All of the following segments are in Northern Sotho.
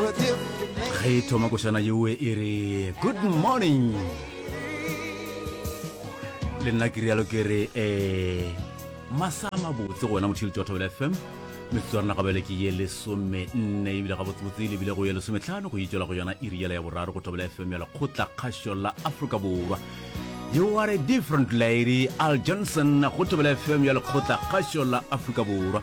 ge e thoma košana yeo e re good morning le nna ke rialo ke re um masa mabotse gona motšhedi tša thobela fm metsotso ya rena gabele ke ye lesome nne ebile gabotsebotse e lebile go ye lesometlhano go itswela go yona e riela ya boraro go thobela fm ya lekgotla kgašo la aforika borwa you are a different lady al johnson go thobela fm ya lekgotla kgašo la aforika borwa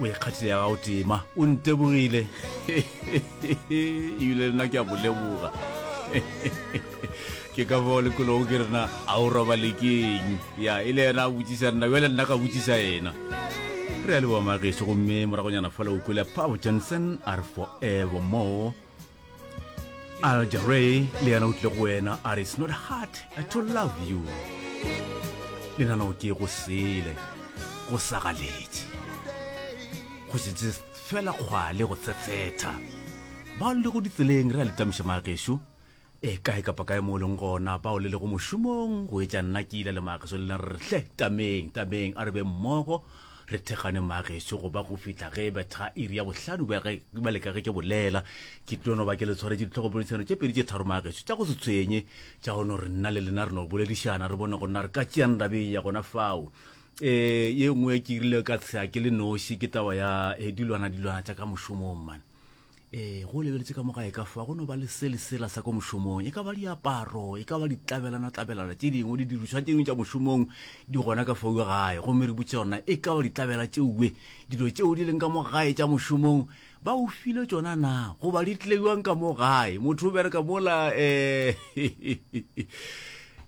o ikgathile ya gago tema o ntebogile ebile lena ke a go leboga ke ka fao lekologo ke rena a o roba lekeng ya e le yena a botsisa nna bjale nna ka botsisa yena re ya leboa mageso gomme moragonyana fa le o kwele pabo johnson are forever more aljaray le yena o tle go wena a re it's not hard to love you le nana o ke go sele go sa galetše go setse fela kgwale go tsetsetha bao le go ditseleng re a letamiša magešu e kae kapa kae mo o leng gona bao le lego mošomong go etša nna ke ile le mageso le na re hle tameng tameng a re be mmogo re thekgane maageso go ba go fihla ge betha iri ya bohlano ba leka ge ke bolela ke tlono ba ke le tshwaretse ditlhogopolisano tše pedi tše tharo maageso tša go se tshwenye tša go no re nna le lena re no boledišana re bone go nna re ka tšeang ndabeng ya gona fao um ye nngwe ke irile ka tsea ke le noši ke taba ya eh, dilwana dilwana tša ka mošomong mane ee go lebeletse ka mo gae ka fa go no ba le se lesela sa ko mošomong e ka ba diaparo e ka ba ditlabelana-tlabelana tše dingwe di dirišwa tše dingwe tša mošomong di gona ka fauwe gae gomme re butse yona e ka ba ditlabela tšeuwe dilo tšeo di leng ka mo gae tša mošomong ba o file tsona na goba di tleiwang ka mo gae motho o bereka mola um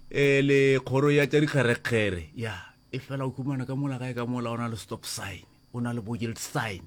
um le kgoro ya tša dikgerekgere ya e fela o kumana ka mola gae ka mola o na le stop sign o na le bogild sign